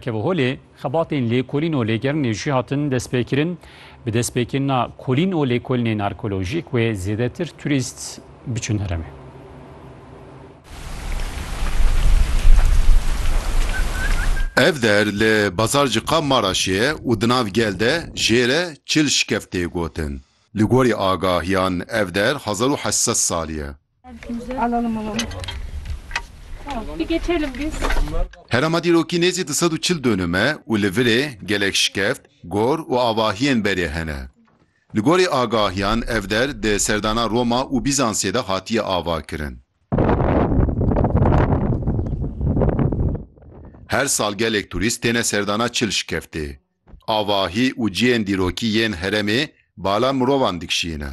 Keviholê, xebatên lêkolîn û lêgerinê jî hatin destpêkirin. Bi destpêkirina kolîn û lêkolinên arkeolojîk wê zêdetir turîst biçin heremê. Ev der li Bazarcika Maraşê ye û di nav gel de jê re çil şikev tê gotin. Li gorî agahiyan ev der hezar û heşt sed salî ye. Herêma dîrokî nêzî du sed û çil dönüm e û li virê gelek şikeft, gor û avahiyên berê hene. Li gorî agahiyan ev der di serdana Roma û Bîzansê de hatiye avakirin. Her sal gelek turîst têne serdana çil şikeftê. Avahî û ciyên dîrokî yên herêmê bala mirovan dikişîne.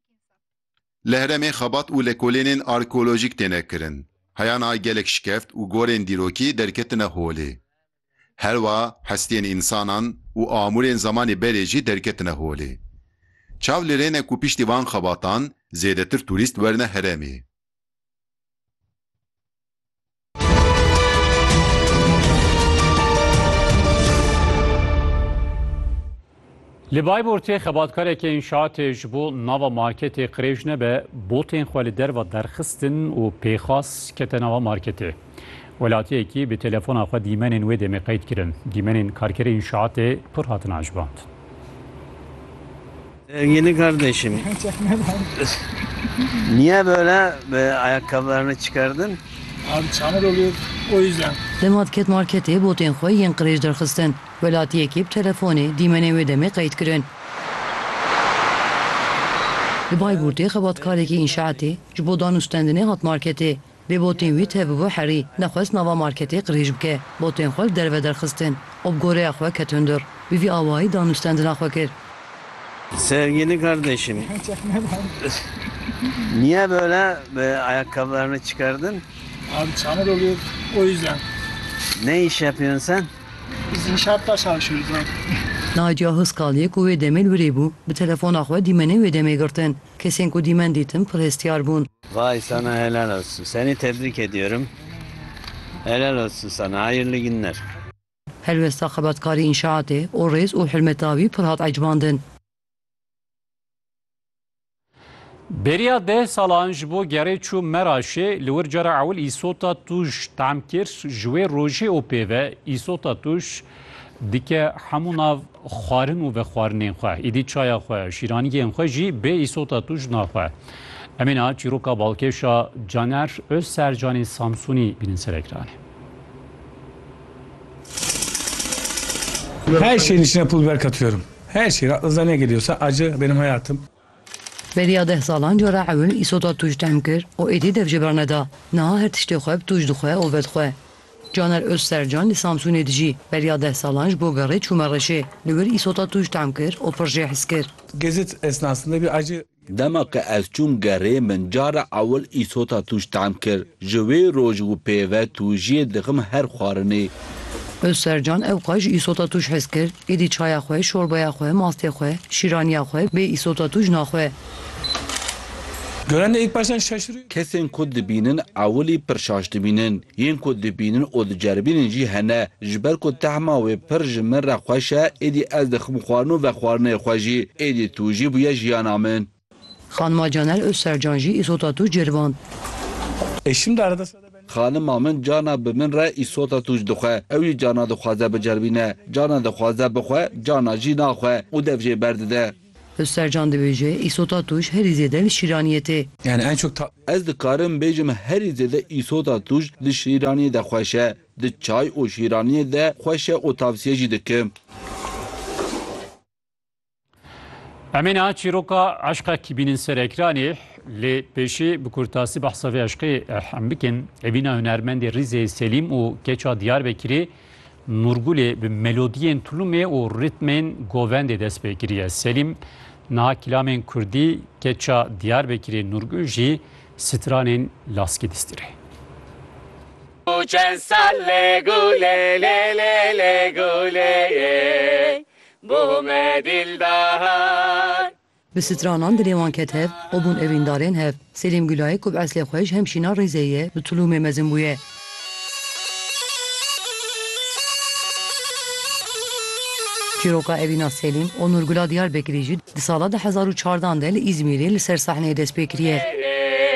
Li heremê xebat û lekolênên arkeolojîk têne kirin. Heyan a gelek şikeft û gorên dîrokî derketine holê. Herwa hestiyên însanan û amûrên zemanê berê jî derketine holê. Çav li rê ne ku piştî van xebatan zêdetir tûrîst werne heremê. Li Bayburtê xebatkarekî înşaatê ji bo nava marketê qirêj nebe botên xwe li derva derxistin û pêxas kete nava marketê. Welatiyekî bi telefona xwe dîmenên wê demê qeyd kirin. Dîmenên karkerê înşaatê pir hatin ajband. Sevgili kardeşim. Niye böyle e, ayakkabılarını çıkardın? Abi çamur oluyor o yüzden. Li Matket Marketê botên xwe yên qirêj derxistin. Welatiyekî bi telefonê dîmenên wê demê qeyd kirin. Li Bayburtê xebatkarekî înşaetê ji bo danûstendinê hat marketê. Dê botên wî tevbû herî, nexwest nava marketê qirêj bike, botên xwe li derve derxistin û bi goreya xwe ketin dûr. Bi vî awayî danûstendina xwe kir. Sevgili kardeşim, niye böyle ayakkabılarını çıkardın? Abi çamur oluyor o yüzden. Ne iş yapıyorsun sen? Biz inşaatta çalışıyoruz abi. Nadia Huskaliyê ku wê demê li wirê bû, bi telefona xwe dîmenê wê demê girtin. Kesên ku dîmen dîtim pir hestiyar bûn. Vay sana helal olsun seni tebrik ediyorum helal olsun sana hayırlı günler. Helwesta xebatkarî înşaatê û rêz û hurmeta wî pir hat ecbandin. Bêriya deh salan ji bo gerê çûm Meraşê, li wir cara ewil îsota tûj tam kir, ji wê rojê û pê ve îsota tûj Dike hemû nav xwarin û vexwarinên xwe, îdî çaya xwe, şîraniyên xwe jî bê îsota tu ji nav xwe. Em ê niha çîroka balkêşa Caner Ozsercanê Samsûnî bînin ser ekranê. Her şeyin içine pul biber katıyorum. Her şey. Rahatınızdan ne geliyorsa acı benim hayatım. Beriya deh salan cara ewil îsoda tûj tehm kir û êdî dev jê berneda. Niha her tiştê xwe bi tûj dixwe û vedixwe. Caner Ozsercan li Samsûnê dijî. Beriya deh salan ji bo gerê çû Mereşê. Li wir îsoda tûj tehm kir û pir jê hes kir. Dema ke ez çûm gerê min cara ewil îsota tûj tehm kir. Ji wê roj û pê ve tûjiyê dixim her xwarinê. Ozsercan ew xwe ji îsota tûj hes kir, êdî çaya xwe, şorbaya xwe, mastê xwe, şîraniya xwe bê îsota tûj naxwe. Kesên ku dibînin ewilî pir şaş dibînin. Yên ku dibînin û diceribînin jî hene. Ji ber ku tehma wê pir ji min re xweş e, êdî ez dixim xwarin û vexwarinê xwe jî. Êdî tûjî bûye jiyana min. Xanima Caner Ozsercan jî îsota tûj ceriband. Xanima min cana bi min re îsota tûj dixwe. Ew jî cana dixwaze biceribîne. Cana dixwaze bixwe, cana jî naxwe û dev jê berdide. Ozsercan dibêje, Îsota tûj herî zêde li Şîraniyê tê. Ez dikarim bêjim herî zêde îsota tûj di Şîraniyê de xweş e. Di çay û Şîraniyê de xweş e û tavsiye jî dikim. Em ê niha çîroka eşqekî bînin ser ekranê lê pêşê bi kurtasî behsa vê eşqê hem bikin. Evîna hunermendê Rîzê Selîm û keça Diyarbekirê Nûrgulê bi melodiyên tulumê û ritmên govendê dest pê kiriye. Selîm niha kilamên kurdî, keça Diyarbekirê Nûrgul jî stranên laskî distîrê. Çend sal lê gulê lê lê lê gulê yê Bo me dildar. Bi stranan dilê wan ket hev û bûn evîndarên hev. Selîm Gulayê ku bi eslê xwe ji Hemşîna Rêzê ye, bi Tulûmê mezin bûye. Çîroka Evîna Selîm, Onur Gula Diyarbekirî jî di sala du hezar û çardan de li Îzmîrê li ser sahneyê dest pê kiriye.